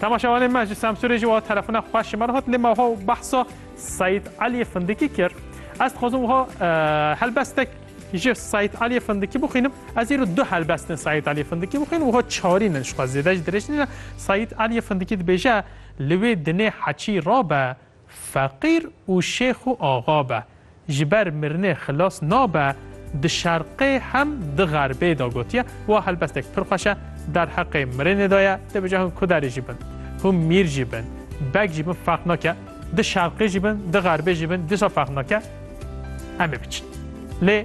Temaşevanê me ji Semsûrê jî wiha telefona xwe ji me re hat lê me wiha behsa Seyîd Eliyê Findikî kir. Ez dixwazim wiha helbestek ji Seyîd Eliyê Findikî bixwînim. Ez îro du helbestên Seyîd Eliyê Findikî bixwînim wiha çarîn in ji xwe zêde jî dirêj nîne. Seyîd Eliyê Findikî dibêje li wê dinê heçî rabe Feqîr û şêx û axa be, ji ber mirinê xilas nabe, di şerqê hem di xerbê de gotiye, wa helbestek pir xweş e, derheqê mirinê de ye, dê bije hûn kuderê jî bin, hûn mîr jî bin, beg jî bin ferq nake, di şerqê jî bin, di xerbê jî bin, dîsa ferq nake, em ê biçin. Lê.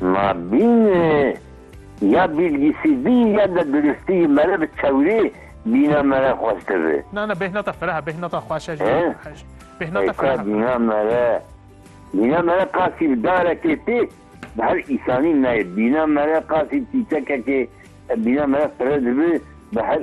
Ma bîn ya bîlgîsîdî ya de duristî yî mere bi çewrî bîna mere xweş dibi. Na na bêhna te fereh e, bêhna te xweş e jî. Bêhna te fereh e. Bîna mere bîna mere qasî bi darekê tê bi her îsanî nayê. Bîna mere qasî çîçekekê bîna mere fire dibi bi her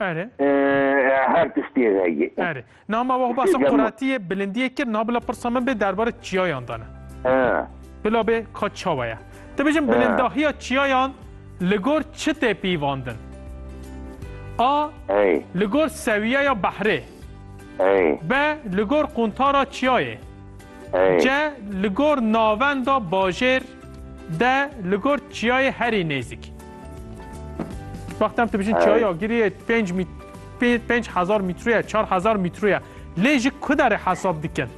Erê. Her tiştê heye. Erê. Na ma wax bahsa quretiyê, bilindiyê kir, na bila pirsa min bê derbarê çiyayan de ne. Bila bê ka çawa ye. Ti bijin bilindahiya çiyayan li gor çi tê pîvandin? A. Li gor sewiyeya behrê. B. Li gor quntara çiyayê. C. Li gor navenda bajêr. D. Li gor çiyayê herî nêzîk. Wextem tu bijin çaya giriye 5 mit 5000 metroya 4000 metroya lê ji kudarê hesab dikin.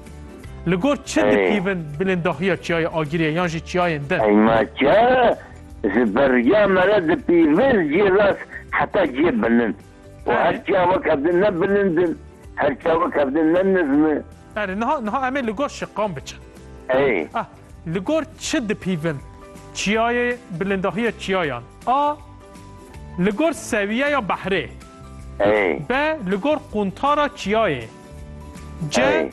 Li gor çi dipîvin bilindahiya çiyaya agiriye yan jî çiyayên din. Eyma çiya ji beriya me re dipîvin jê rast heta cê bilind. Û her çiya wek ev din ne bilind in, her çiya wek ev din ne nizm in. Erê, niha niha em ê li gor şiqan biçin. Erê. A, li gor çi dipîvin çiyayê bilindahiya çiyayan? A, li gor sewiyeya behrê. Erê. B, li gor quntara çiyayê. C, Erê.